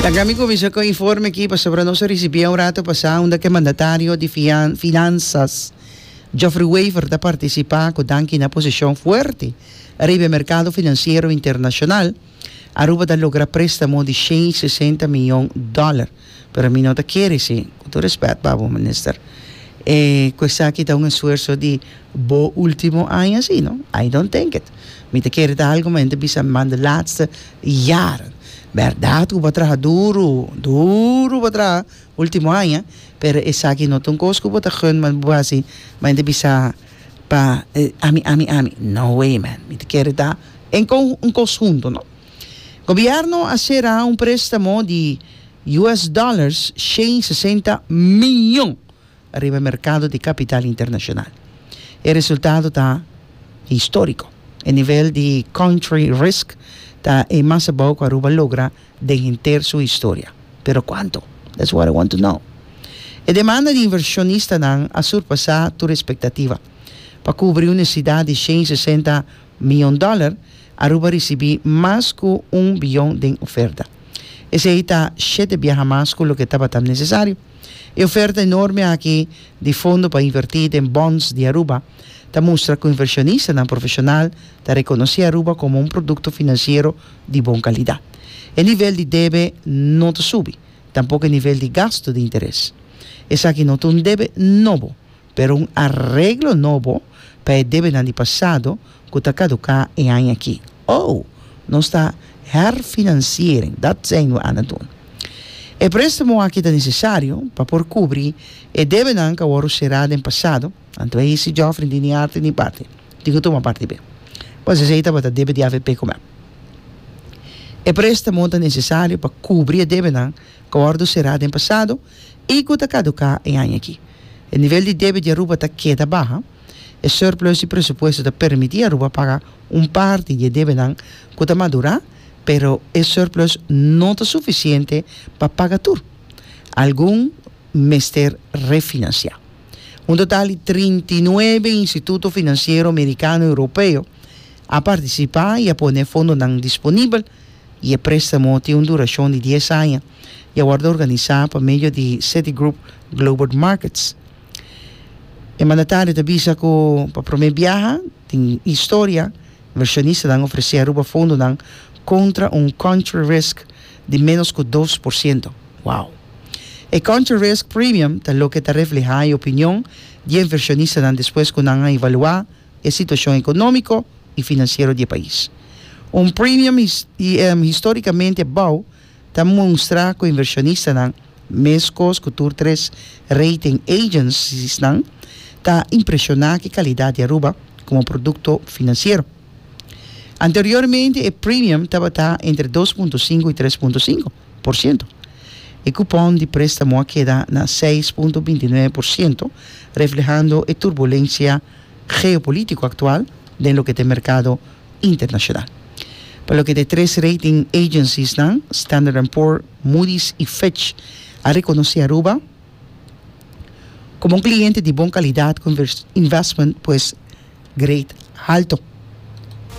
Laga mi kuminsá ku e informe aki pasobra nos a risibié un rato pasá unda ku e mandatario di fian Finansas Geoffrey Wever ta partisipá ku danki na posishon fuerte riba e merkado finansiero internashonal Aruba ta logra préstamo di shen i sesenta miyon dòler pero mi no ta kere si, ku tur respèt pa bo Minister, e ku esaki ta un esfuerso di bo último aña si no, I don't think it. Mi ta kere ta algu mente bisa mi man de laatste jaren. Bèrdat ku bo a traha duru, duru bo a traha último aña, pero esaki no ta un kos ku bo ta gun bo hasi pa mente bisa pa ami, ami, ami, no way man, mi ta kere ta en kon un kos huntu no. Gobierno a sera un prestamo di US dollars shen sesenta miyon riba e merkado di kapital internashonal. E resultado ta historiko. E nivel di country risk ta e mas abou ku Aruba logra den henter su historia. Pero kuanto? That's what I want to know. E demanda di invershonistanan a surpasá tur espektativa pa kubri un nesesidat di shen sesenta mion dòler, Aruba risibí mas ku un biyon den oferta. Esei ta shete biaha mas ku loke tabata nesesario. E oferta enorme aki di fondo pa invertí den bonds di Aruba ta mustra ku invershonistanan profeshonal ta rekonosé Aruba komo un produkto finansiero di bon kalidat. E nivel di debe no ta subi, tampok e nivel di gastu di interes. Esaki no ta un debe nobo Pero un areglo nobo pa e debenan di pasado ku ta kaduká e aña aki. Ou, nos ta herfinanciering, dat zijn we aan het doen. E préstamo aki ta nesesario pa por kubri e debenan ku a wòrdu será den pasado, anto a hisi Geoffrey di ni arti ni parti di ku tuma parti be. Pues esei tabata debe di avp ku mep. E préstamo ta nesesario pa kubri e debenan. Akordo será den pasado i ku ta kaduká e aña aki. E nivel di debe di Aruba ta keda baha. E surplus di presupuesto ta permití Aruba paga un parti di e debenan ku ta madurá, pero e surplus no ta sufisiente pa paga tur. Algun mester refinansiá. Un total di trinta i nuebe instituto finansiero merikano i europeo a partisipá i a pone fondonan disponibel. y e prestamo tin un duracion di dies aña y a wordo organisa pa medio di Citigroup Globert Markets. E mandatario ta bisa cu pa prome biaha den historia inversionistanan ofrece Aruba fondonan contra un country risk di menos cu dos por ciento. Wow! E country risk premium ta loke ta refleha e opinion di e inversionistanan despues cu nan a evalua e situashon ekonómiko i finansiero di e pais. Un premium histórikamente bou ta munstra ku invershonistanan, meskos ku tur tres rating agenciesnan, ta impreshoná ku e kalidat di Aruba komo produkto finansiero. Anteriormente e premium tabata entre dos punto sinku i tres punto sinku por siento. E kupon di préstamo a keda na seis punto binti nuebe por siento, reflehando e turbulensia. geopolítico actual den loke ta e mercado internacional. Pa loke ta e tres rating agenciesnan, Standard and Poor, Moody's y Fitch, a reconoce Aruba como un cliente di bon calidad cu investment pues grade halto.